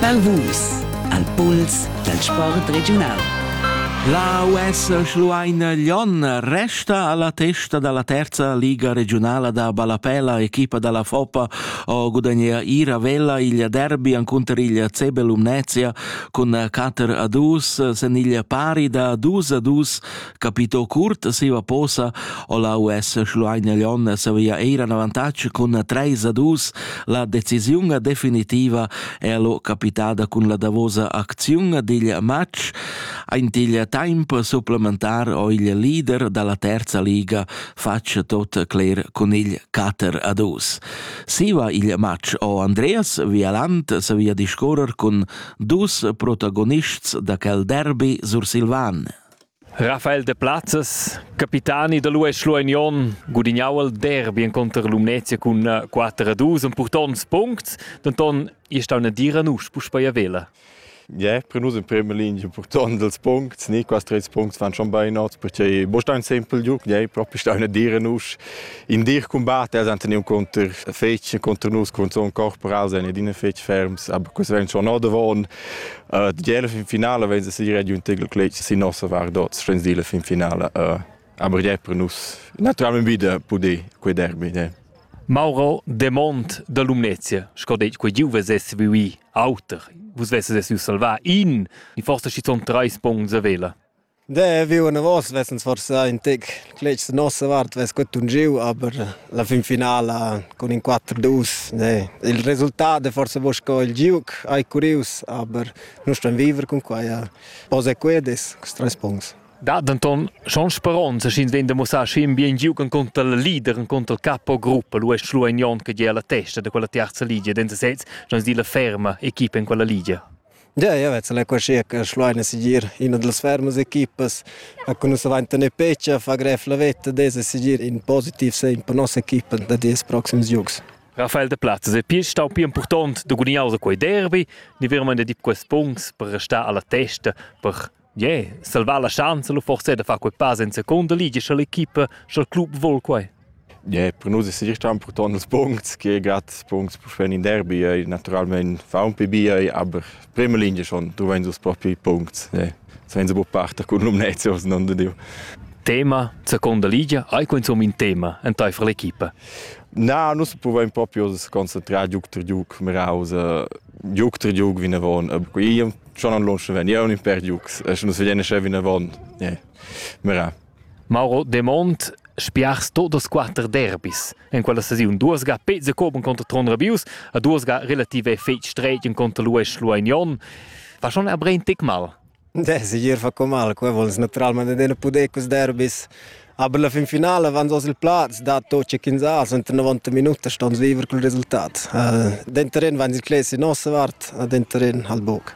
Balvus al puls dal sport regiunal. La US Schlueina Lyon resta alla testa dalla terza liga regionala da ballapella equipa dalla Foppa o gudagnea ir a Vella il derby incontro il CB Lumnezia con 4 a 2 sen il pari da 2 a 2 capitò curt da siva posa o la US Schlueine Leon savia eir an avantatg cun treis a dus la decisiun definitiva è lo capitada cun la davosa acziun digl match aint igl temp supplementar o igl leader dalla terza liga fatg tot cler cun igl 4 a 2 siva igl match o Andreas Vialant savia discorrer cun dus protagonists da quel derby sursilvan Rafael Deplazes, capitani da l'US Schlueignon, gudignau il derby encunter Lumnezia cun 4 a 2 en purtonts puncts, denton ei stau una dira nus puspei a Vela. Yeah, per nus in prima linea impurtant dels Punkts, ni quasi tres Punkts fan schon bei not, perché bo sta ein simpel giuc, yeah, proprio sta una dire nus in dir combat, els han teniu contr fetg contr nus contr son corporal, sen in fetg ferms, aber questi werden schon noch davon. Uh, die fin finala wenn sie ready und tegel kleit sie nossa war dort schens dile fin finala uh, aber je per nus naturalmente wieder poder quei derby ne Mauro de Mont da Lumnezia, sco detg, quei giuve sesse vivi auter, vus vesses es salvà in, i forse ci son treis punts a vela. Da, viu anavos vess'ins forsà in tec cletgs da nossa vart, vess quet tungiu, aber la fin finala cun in 4-2, ne. Il resultat è forse mo sco il giuc, hai curius, aber nu ston viver cun quai. Pos e quedes, tres punts. Dat denton schon speronza schin vegn da mussar schin bien giugen contra la leader en contra capo gruppa lu est schlu ein jon che gia la testa de quella terza ligia den sesez schon di la ferma equipa in quella ligia Ja, ja vezza la quassia che Schluein es segir üna da las fermas equipas che nus avain tenü pech a far grev la vetta dess segir in positiv segn per nossa equipa da dis proxims jogs. Raffaele de Platzes è pir stau pia impurtont da gudignar quei derby, ni veramente di quest punct per restar alla testa per Yeah, salvar la schanza lu forse da far quei pass en seconda ligia sche l'equipa sch'el club vol quei. Yeah, per nus è sicher impurtont ils punts che gerade punts per fare in derby e naturalmente fa un po' bia aber prima linea schon trovain dus propi punts yeah. senza buca parter con Lumnezios non diu Tema, seconda ligia, hai quindi un tema en tai für l'equipa? Na, nus provaim proprio a concentrare giuc per giuc meraus giuc tre giuc vinavon, buca schon an lunsch vegniun in per giucs, e sche nus vegien sche vinavon, yeah. mira. Mauro Demont spiars todas quater derbis. En quella sesiun duas ga pezze coben contra Tron Rabius, a duas ga relative fetg stretgen contra l'US Luagnon. Va schon er brein tic mal? Deh, segir fa co mal, qua vols natüralmaing adüna pudair culs derbis. Aber la fin finala vans hoz il plaz, dato cha ch'ins ha suenter 90 minutas stans viver cul resultat. Denter in vains il cler sin nossa vart, a denter in ha'l buc.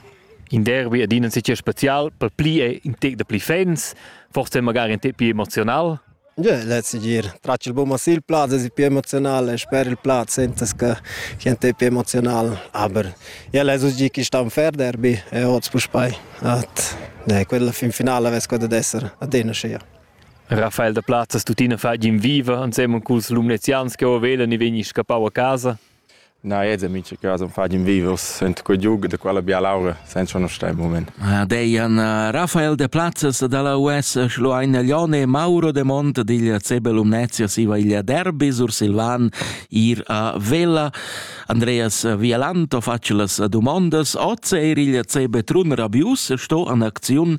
In derbi adina insatge special, per pli è in tec da pli fans, forse magari in tec pli emozional? Jeu less gir tratg il buca sil plaz, es pi emozional e sper il plaz sentas che che ent pi emozional, aber jeu less uss gir quist on fer derbi e oz puspei. At ne, quella fin finala vess quella dad esser adina schia. Raffaele da Plazzas tuttina fa in viva ansema culs lumnezians che o vela ni vegni scappau a casa. Na, eds en mincha cas am fagen vivos sent quei giug da quella bialaura senza conoscer il moment. Deian Rafael de Plazzas dalla US Schluein Leone Mauro de Mont digl CB Lumnezia siva igl derby sur Silvan ir a Vella Andreas Vialanto faccia las dumondas oz er igl CB Trun Rabius sto an acziun